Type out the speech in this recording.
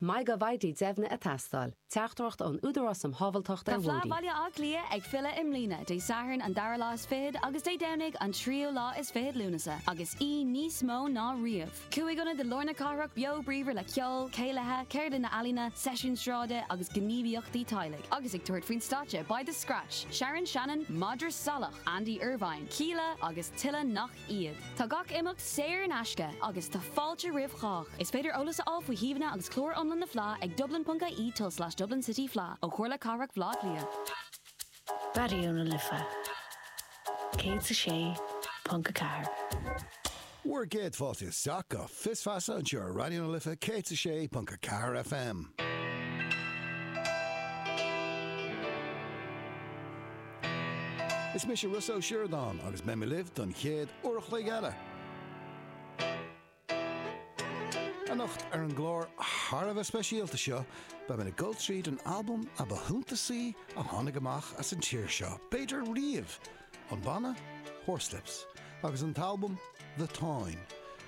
mbeidh go bhfaighidh deimhne a tástáil, teachtaireacht ón Údarás um Shábháilteacht ar Bhóithre. Tá Fleadh Bhaile Átha Cliath ag filleadh i mbliana, Dé Sathairn an dara lá is fichead agus Dé Domhnaigh an tríú lá is fichead Lúnasa, agus í níos mó ná riamh. Cúig ionad i lár na cathrach beo bríomhar le ceol, céilithe, ceardlanna ealaíne, seisiúin sráide agus gníomhaíochtaí teaghlaigh, agus ag tabhairt faoin stáitse beidh The Scratch, Sharon Shannon, Madra Salach, Andy Irvine, Kíla agus tuilleadh nach iad. Tá gach imeacht saor in aisce agus tá fáilte roimh chách. Is féidir eolas a fháil faoi shuíomhanna agus clár iomlán na Fleá ag dublin.ie tulslais Dublin City Fleadh ó Chomhairle Cathrach Bhleá Cliath. Raidió na Life 106.4. Bhur gcéad fáilte isteach go Fios Feasa anseo ar Raidió na Life 106.4 FM. Is mise Rossa Ó Sioradáin agus beidh mé libh don chéad uair a chloig eile. Anocht ar an gclár thar a bheith speisialta seo, beidh mé ag dul tríd an albam a ba shuntasaí a tháinig amach as an tír seo, b'fhéidir riamh, an banna Horslips agus an t-albam The Táin.